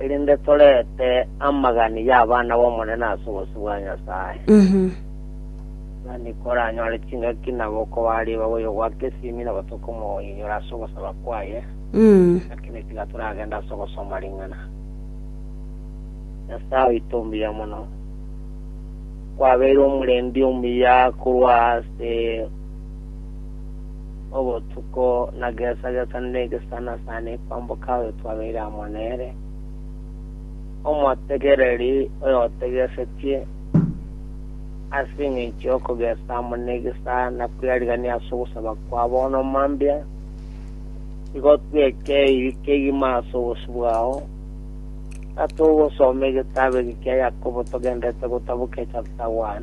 erinde torete amagani y'abana b'Omonene ase obosio bwa Nyasae. Tari koranyore chingaki na gokobariba boigo gwa Kesimi na gotoka omoinyore ase ogosaba kwaye, lakini tiga toragende ase ogosoma ring'ana. Nyasae oito mbuya mono, kwabeire omorendi omuya korwa ase obotuko na gesa-gesa negesana sane kwamboka oyo twabeire amo nere, omotegereri oyotegesetie, ase engencho y'okogesa amo negesa na kweriarigania ase ogosaba kwa bono mambia, igo tweke ebibe kegima ase obosio bwao, gatogosoma egetabu eke kia Yakobo togendererete gotabokia chapter 1.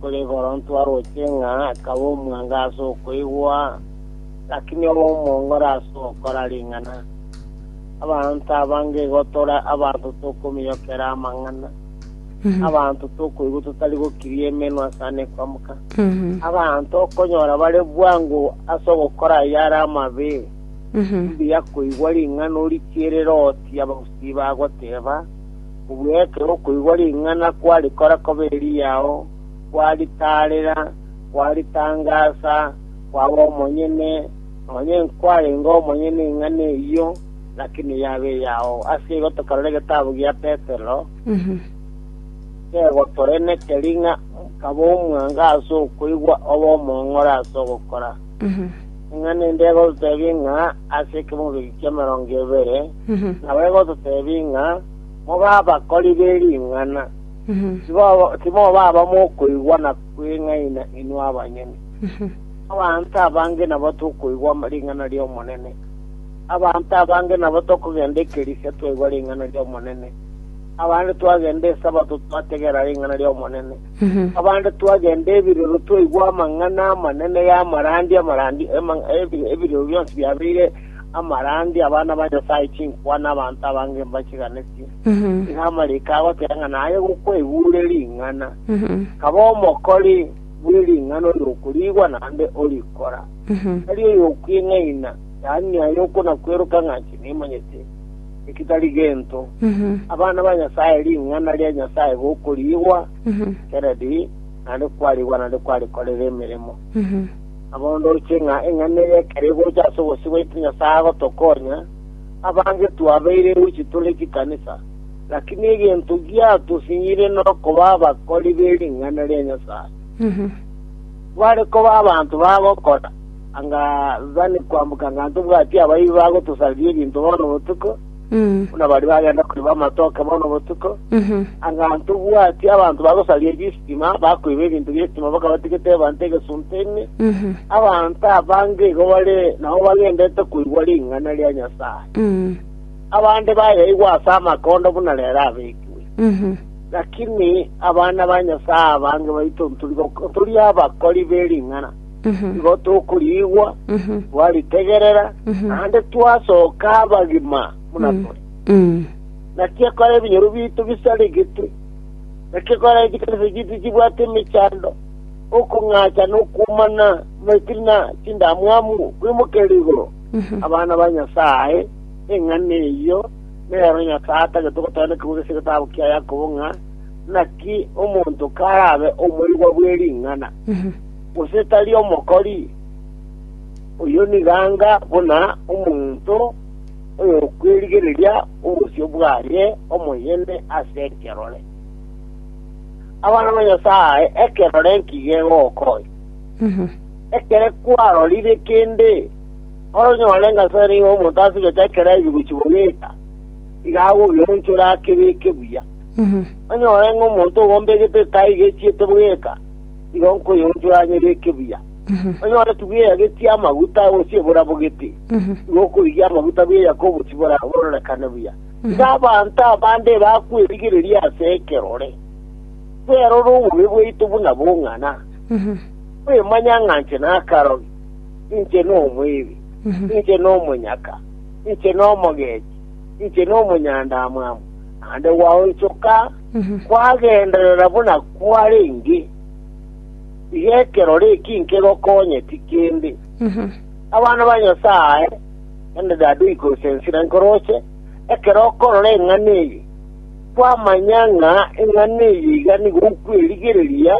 Korende Koronto aroche ng'a akaba omwango ase okoigwa, lakini obe omong'ora ase ogokora ring'ana. Abanto abange igo tore abanto tokomiiyokera amang'ana, abanto tokoigwa totari gokiria emenwa ase ane kwamoka, abanto okonyora bare bwango ase ogokora ayare amabe. Mbuya koigwa ring'ana orichie erere ogotia abagusii bagoteeba, Obuyaekero okoigwa ring'ana kwarikora koba eriyao, kwaritaarera, kwaritangaasa, kwaba omonyene, nonya inkwarenge omonyene ing'ana eyio, lakini yaba eyao. Ase igo tokarore egetabu gia Petero, kegotorenekeria ng'a kaba omwango ase okoigwa obe omong'ora ase ogokora. Ing'ana ende egototebia ng'a ase ekemobigi ki'emerongo ebere nabo egototebia ng'a mobe abakori be ring'ana, tibo- timoba abamokoigwa na kweng'aina inwe abanyene. Abanto abange nabo tokoigwa ama- ring'ana ri'Omonene. Abanto abange nabo tokogenda ekerisia twaigwa ring'ana ri'Omonene. Abande twagenda Esabato twategera ring'ana ri'Omonene. Abande twagenda ebiroro twaigwa amang'ana amanene y'amarandi, amarandi, emang- ebi- ebiroro bionsi biabeire amarandi, abana ba Nyasae chinkwa na abanto abange mbachiganetie. Iga amariko agoteba ng'a naye gokwaigure ring'ana, kaba omokori bwe ring'ana oyokoriigwa naende orikora, tari oyokwing'aina, yaani naye okonakweroka ng'a inche nimanyete. ekitari gento, abana ba Nyasae, ring'ana ria Nyasae gokoriigwa keredi, naende kwariigwa naende kwarikorera emeremo. Nabo ndoche ng'a eng'ana eria ekero egocha ase obosio bwaito Nyasae agotokonya, abange twabeire goichi tore chikanisa, lakini egento giatosinyire nokoba abakori be ring'ana ria Nyasae. Tware koba abanto bagokora, Anga Zani kwamboka ng'a ntobwati abaibi bagotosariria ebinto bono botuko, buna baria bagenda koiba amatoke bono botuko, anga ntobwati abanto bagosariria chistima, bakoiba ebinto bi'estima mpaka batigete ebanta egesunte ime. Abanto abange igo bare nao bagendete koigwa ring'ana ria Nyasae. Abande bayaigwa ase amakondo buna rero abekiwe. Lakini abana ba Nyasae abange baito nturi abakori be ring'ana. Igo tokoriigwa, twaritegerera, naende twasoka abagima buna tore. Naki ekero ebinyoro biaito bisaregetwe, naki ekero chikanisa chiaito chibwate emechando, okong'acha na okwomana, maitiri na chindamwamu kwimokerire igoro, abana ba Nyasae, eng'ana eyio nero Nyasae atagete gotooneka korwa ase egetabu kia Yakobo ng'a, Naki omonto karabe omoigwa bwe ring'ana. gose tari omokori? Oyio nigo anga buna omonto oyokwerigereria obosio bwaye omoyene ase ekerore. Abana ba Nyasae, ekerore nki gegokonya? Ekere kwarorire kende, oronyore ng'a nse nigo omonto asibete ekero aigwe gochigwa geita, iga agogeonchora akebeke buya. Onyore ng'a omonto ogombegete taigechiete bweka. igo nkoyonchoranyora ekebuya. Onyore tibweyagetie amaguta gose eborabogete, igo okorigia amaguta bweya koboti bora bororekane buya. Iga abanto abande bakwerigereria ase ekerore, kwerora obobe bwaito buna bong'ana, kwemanya ng'a inche nakarogi, inche nomoebi, inche nomonyaka, inche nomogechi, inche nomonyandamwamu, naende gwaonchoka. Kwagenderera buna kwarenge, iga ekerore eki nkegokonye tikende. Abana ba Nyasae, naende dade oikorosia ensira nkoroche, ekero okorora eng'ana eye, kwamanya ng'a eng'ana eye iga nigo okwerigereria,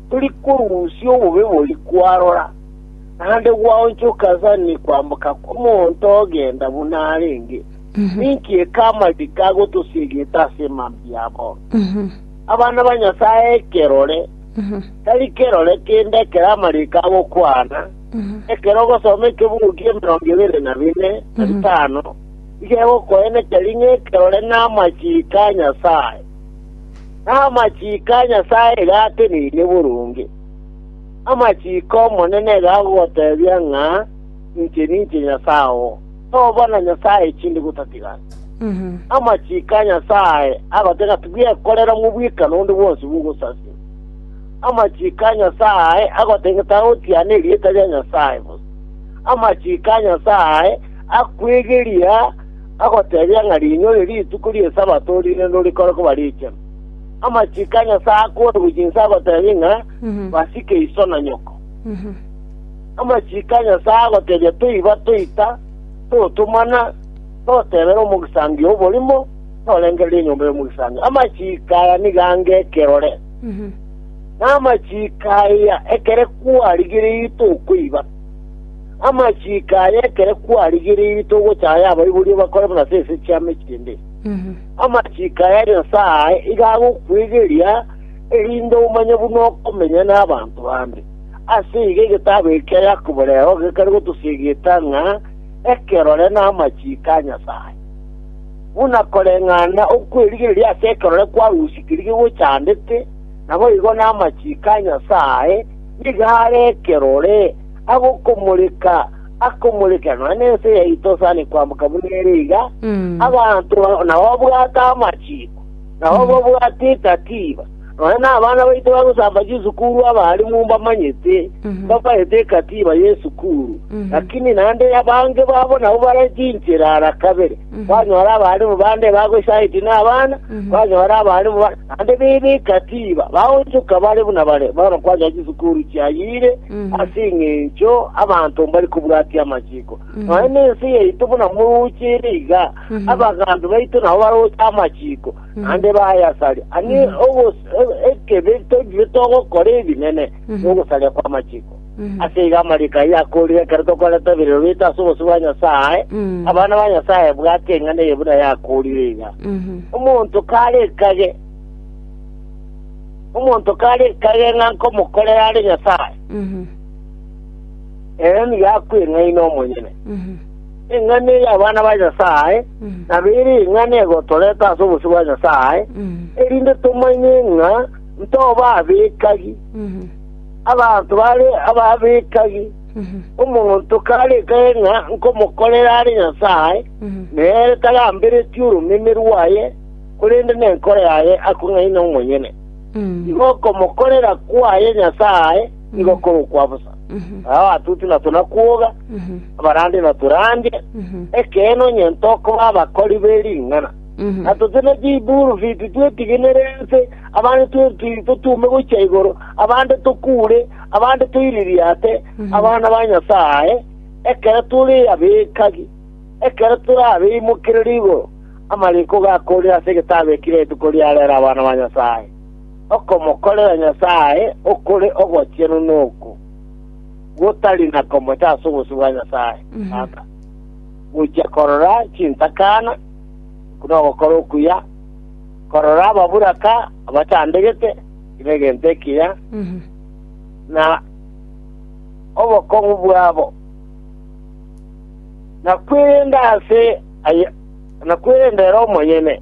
tori korusia obobe boria kwarora, naende gwaonchoka Zani kwamboka kw'omonto ogenda buna arenge. Ninki ekamati kagotosiegete ase emambia yabo? Abana ba Nyasae ekerore, tari kerore kende ekero amariiko agokwana, ekero ogosoma ekebugu ki'emerongo ebere na bine, na bitano, nigo egokoenekeria ng'a ekerore namachiiko a Nyasae, na amachiiko a Nyasae iga ateneine boronge. Amachiiko 'Omonene iga agogotebia ng'a, Inche ninche Nyasae oo. Toba na nyasae echindi gotatigana. Amachiko a Nyasae agotega tibwekorera mobweka nonde bwonsi bw'ogosasima. Amachiko a Nyasae agotega tagotiana erieta ria Nyasae bosa. Amachiko a Nyasae akwegeria agotebia ng'a rinyore rituko ri'esabato rinde ndorikore koba richenu. Amachiko a Nyasae akore gochia inse agotebia ng'a basike iso na nyoko. Amachiko a Nyasae agotebia toiba toita totomana, totebera omogisangio oborimo, torengereria enyomba y'omogisangio. Amachiko aya nigo ange ekerore, na amachiko aya ekere kwarigereiri tokoiba. Amachiko aya ekere kwarigereiri togochaya abaiboria bakore buna ase ense chiame chinde. Amachiko aya Nyasae iga agokwegeria, erinde omanye buna okomenya n'abanto bande. Ase igo egetaabo eke kia Yakobo reo gekare gotosiegeta ng'a ekerore namachiiko a Nyasae. Buna koreng'ana okw'erigereria ase ekerore kwarusikerigwe gochandete, naboigo namachiiko a Nyasae nigo are ekerore agokomoreka akomorekera nonya nense yaito sani kwamboka buna ere iga, abanto nababwate amachiiko, nabababwate ekatiba, Nonya nabana baito bagosamba chisukuru abalimu mbamanyete, mbabaete ekatiba y'esukuru. Lakini naende abange babo nabo bare chinchera ara kabere, kwanyora abalimu bande bagochayeti nabana, kwanyora abalimu bande naende bebe ekatiba, baonchoka bare buna bare. Bono kwanyora chisukuru chiayire ase engencho abanto mbari kobwatia amachiko. Nonya nense yaito buna morooche ere iga, abagambi baito nabo baroche amachiko. naende bayasare. Ani ogos- e- ekebe toinywe togokora ebinene nogosaria kw'amachiko. Ase iga amariko ayio akoorire ekero tokorenta eberero biaito ase obosio bwa Nyasae, abana ba Nyasae bwate eng'ana eye buna yakoorire iga, Omonto kare ekage, omonto kare ekage ng'a nkomokorera are Nyasae, ere nigo akweng'aina omonyene. Eng'ana eye y'abana ba Nyasae nabo ere eng'ana egotoreta ase obosio bwa Nyasae, erinde tomanye ng'a ntoba abekagi, abanto bare ababekagi. Omonto karekage ng'a nkomokorera are Nyasae, nere tagamberetie oromeme rwaye, korende nenkoro yaye akong'aina omonyene. Igo okomokorera kwaye Nyasae nigo korokwa bosa. Abatuti na tonakwoga, abarandi na torandie, ekeene onye ntokoba abakori be ring'ana. Na tote ne chibulufiti twetigenere ense, abande twerutiri totume gochia igoro, abande tokure, abande toiririate abana ba Nyasae ekero tore abekagi, ekero tore abeimokereri igoro. Amariko gakoorire ase egetabu ekio rituko riarera abana ba Nyasae. Okomokorera Nyasae okore ogochenu noko, gotari na komocha ase obosio bwa Nyasae Tata, gochia korora chintakana, buna ogokora okuya, korora ababuraka abachandegete kera egento ekiya, na obokong'u bwabo, na kwerenda ase aye, na kwerenda ere omonyene.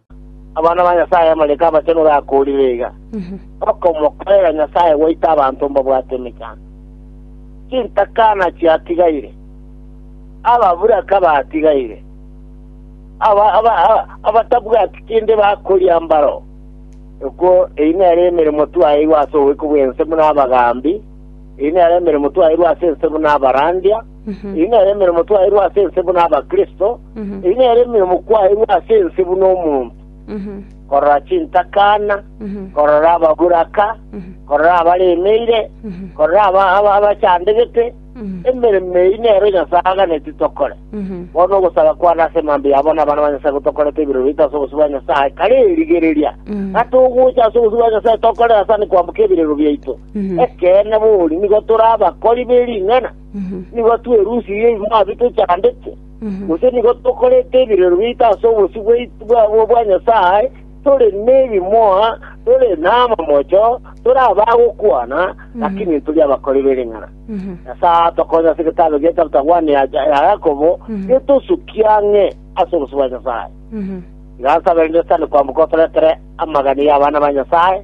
Abana ba Nyasae amariko abachenu gakoorire iga, Okomokorera Nyasae gwaito abanto mbabwate emechando. Chintakana chiatigaire, ababuraka batigaire, aba- aba- aba- abatabwati kende bakoria mbaro. Okwo eyi nere emeremo twaeirwe ase oboiko bw'ense buna abagaambi, eyi nere emeremo twaeirwe ase ense buna abarandia, Eyio nere emeremo twaeirwe ase ense buna Abakristo, eyio nere emeremo kwaeirwe ase ense buna omonto, korora chintakana, korora ababuraka, korora abaremeire, korora aba- aba- abachandegete. Emeremo eyio nero Nyasae aganeti tokore. Bono ogosaba kwane ase emambia yabo na abana ba Nyasae gotokorete ebirori bito ase obosio bwa Nyasae, kare erigereria ng'a togocha ase obosio bwa Nyasae tokorere asani kwamboka ebirero biaito. Ekeene bori nigo tore abakori be ring'ana, Nigo twerusirie ebimoo abio tochandete? Gose nigo tokorete ebirero biaito ase obosio bwaitu bwa Nyasae, tore nebimoa, tore namamocho, tore abagokwana, lakini tori abakori b'ering'ana? Nyasae atokonye ase egetabe gie Chapter 1 ya Yakobo, getosukie ang'e ase obosio bwa Nyasae. Iga nsabe rende sitani kwamboka otoretere amagani y'abana ba Nyasae.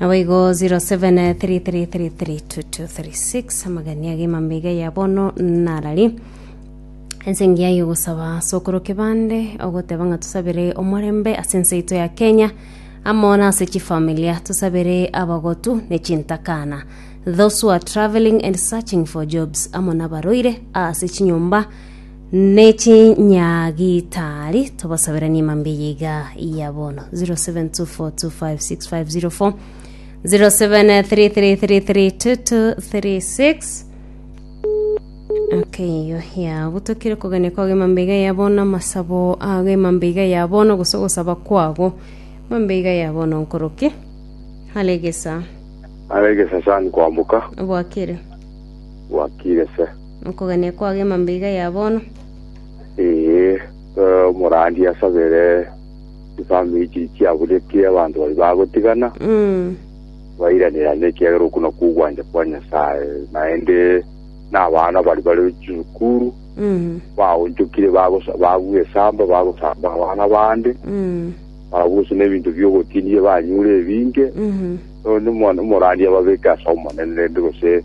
naboigo 0733322236 amagania gemambeiga ya bono narari ense engiya yogosaba ase okoro kebande ogoteba ng'a tusabere omorembe ase ense yaito ya kenya amo na ase chifamilia tusabere abagotu ne chintakana those who are traveling and searching for jobs amo nabaroire ase chinyomba Ne chinyagitari tobasaberanie mambia eye iga ya bono 0724256504 0733332236 Okay, yo ya butokire kogania kwago emambeiga ya bono amasabo ago emambeiga ya bono gose gosaba kwago emambeiga ya bono nkoroki alegesa aregesa sani kwambuka obwakire bwakire se Nokogania kwao gima mbiga ya bono. Ee, eh, omorandia asabere chifamiri chiria chiaburetie abanto baria bagotigana, Mm. bairanerane, ekiagera okwo nakwo ogwancha kwa Nyasae. Naende n'abana baria bare chisukuru Mm. baonchokire bagosa- babua esamba bagosamba abana bande Mm. barabwo gose n'ebinto biogotinia banyure ebinge Mm. Nonya omwana omorandia ababeke ase omonene rende gose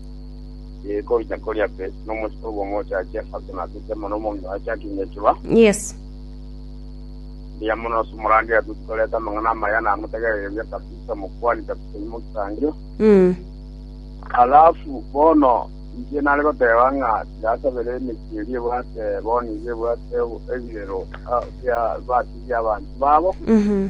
Ee, koruta koria pe, nomosike obo omochache ase natete mono omong'ina oye akinye chiba. Yes. Mbuya mono ase omorandi atweti koreta amang'ana amaya na amotegerereria kabisa mokwani kabisa nyuma ogisangio. Mm. Alafu bono inche nare goteba ng'a tirasabere emechie eria ebwate bono iga ebwate ebirero ah, bia batigia abanto babo. Mhm.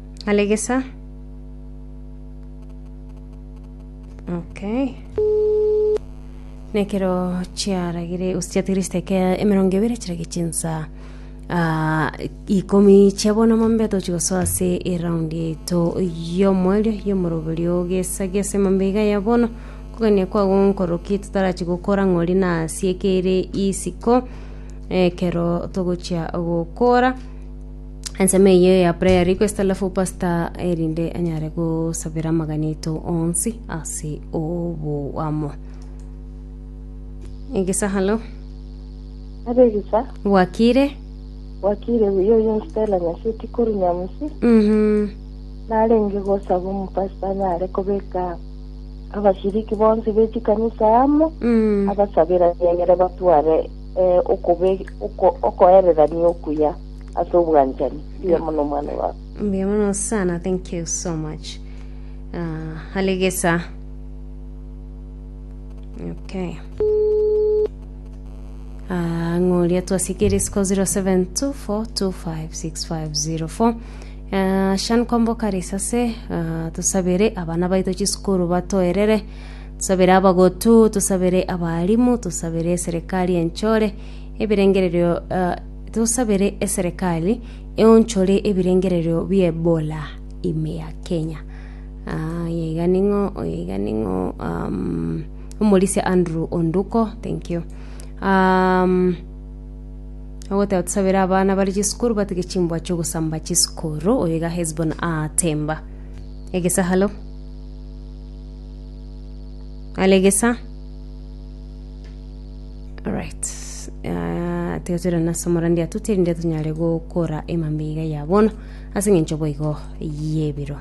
Alegesa. Okay. Nekero chiaragire gose chiatigire chiteke emerongo ebere chirage chinsa ah, ikomi chia bono mambe tochi gosoa ase eraundi yaito y'omoerio y'omoroberio gesa gesa mambe iga ya bono kogania kwago nkoroki totarachi gokora ng'ori na asiekeire isiko ekero togochia gokora Ensemo eye ya prayer request alafu pastor erinde anyare gosabera amagana eto onsi ase oboamo egesa halo Abegisa, bwakire wakire buya oyo Stella Nyasiti koru Nyamusi, Mhm. narenge gosaba omopasita anyare kobeka abashiriki bonsi bechikanisa amo, Mm. abasaberanie egere batware eh, okobe- oko- okoererania okuya. ase obwanchani. Mbuya mono omwana baba. Mbuya mono sana, thank you so much. Uh, alegesa. Okay. Uh, ng'oria twasikiri siko 0724256504 uh, shan komboka risase uh, tusabere abana baito chisukuru batoerere tusabere abagotu tusabere abalimu tusabere serikali enchore ebirengererio uh, Tosabere eserekari eonchore ebirengererio bi'Ebola ime ya Kenya. Ah, oyo iga ning'o, oyo iga ning'o, um, omorisia Andrew Onduko, thank you. Um, ogoteba tusabere abana bari chisukuru batige chimbwa chiogosamba chisukuru oyo iga hesbon atemba egesa halo alegesa Alright. Ah, tiga toira nase omorandi atute erinde tonyare gokora emambia iga ya bono ase eng'encho boigo y'ebiro